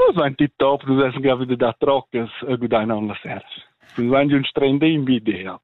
Nus ein tip top, nus essen gravide da troccas e gudain on las seras. Nus ein un stregn de invidia.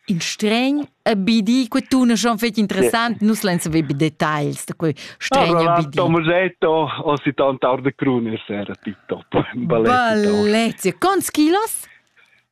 In stregn a bidi, que tu ne schon fetg interessant, nus lein saver bi details da quei stregn a bidi. Tom Musetto, o si tant ar de crune sera tip top. Ballezia. Ballezia. Quants kilos?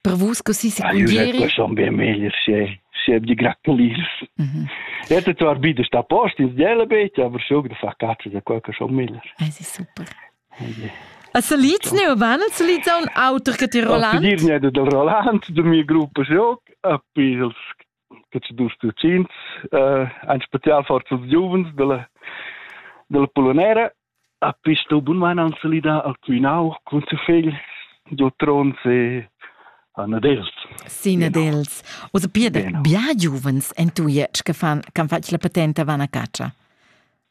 Per vus così secondieri? Ah, io ho bien meglio, se se di gratulis. Mhm. Jetzt hat zwar wieder sta post ins Jelebet, aber schon da fa cazzo da quel che schon miller. Es ist super. A se liz ne urban, se liz un auter che ti Roland? A dir ne del Roland, du mio gruppo shock, a pils che ci dus cucins, eh, ein spezial forza giuvens della, della Polonera. A pisto bunman an solida a cuinau cun su fegl giu tron se a Nadels. Si Nadels. Osa pia da bia giuvens en tu jetsch che fan, can fatg la patenta van a caccia.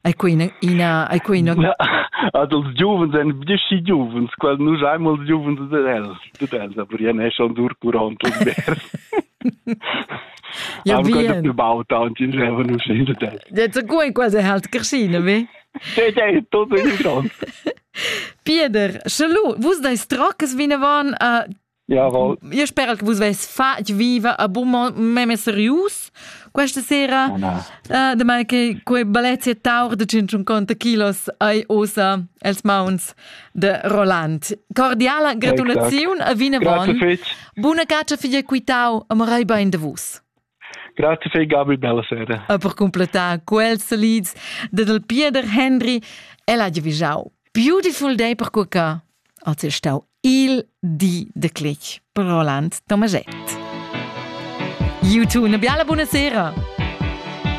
Ei quei ina, ina ei quei ina Na, ad els giuvens ein bdeschi giuvens, quel nus ein els giuvens ded els, ded els, aber ien è schon dur curant und vers. Ja, bien. gebaut und in Reven und schöne Zeit. Jetzt gut quasi halt geschiene, wie? Hey, hey, tot in Chance. Peter, Schalu, vus deis tracas wie ne waren äh, Io spero che vus avessi fatg viva a Beaumont meme serius questa sera. Oh, no. uh, de mai che quei balezia taur de 150 kilos ai osa els mauns de Roland. Cordiala gratulaziun a Vine Von. Buna caccia figlia quitau, amorai bain de vus. Grazie fai Gabi, bella sera. E per completar quels solids de del Pieder Henry el ha givisau Beautiful Day per cuca. Als è stau il di de click per Roland Tomaget. You too, una biala buonasera.